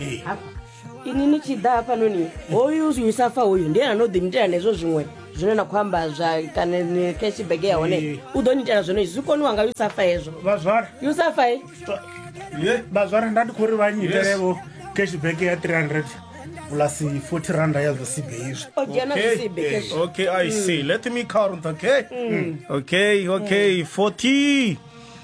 Eh. hafha ini ni tshi ḓa hafhanoni hoyu usa fa hoyu ndi ene ano ḓi nitela nezwo zwiṅwe zwine na khou amba zwa kana ni cash bag ya hone Eh. u ḓo nitela zwone zwi koniwa nga usa fa hezwo vhazwara usa fa eh? ye vhazwara nda ndi khou ri vha nyitelevo cashback ya 300 plus 40 randa ya zwisibe izwi o dzhena Okay, zwisibe eh, cash okay, I see. Let me count, okay? Okay, okay, 40.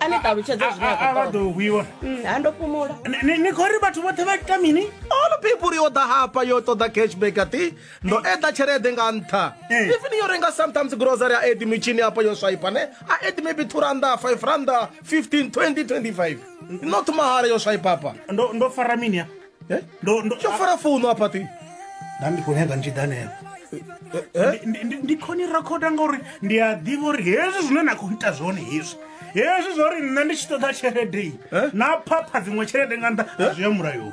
a ni ṱalutshedze zwine a- a- a vha ḓo hwiwa Mm, ha ndo fhumula Ni- ni- ni khou ri vhathu vhoṱhe vha ita mini all people yo ḓa hafha yo ṱoḓa cashback ati ndo eḓa tshelede nga nṱha Eh. even yo renga sometimes grocery a edi mitshini hafha yo swaipa ne a edi maybe two randa five randa 15 20 25 not mahala yo swaipa hapa ndo ndo fara mini ya Eh? ndo ndo tsho fara founu apa ti nda ndi khou nyaga ntshidanela eh? Ndi- ndi- ndi khoni rakhoda ngauri ndi a ḓivha uri hezwi zwine na khou ita zwone hezwi hezwi zwa uri nṋe ndi tshi ṱoḓa tshelede iyi Eh? na phapha dziṅwe tshelede nga nṱha a zwi ya mulayoni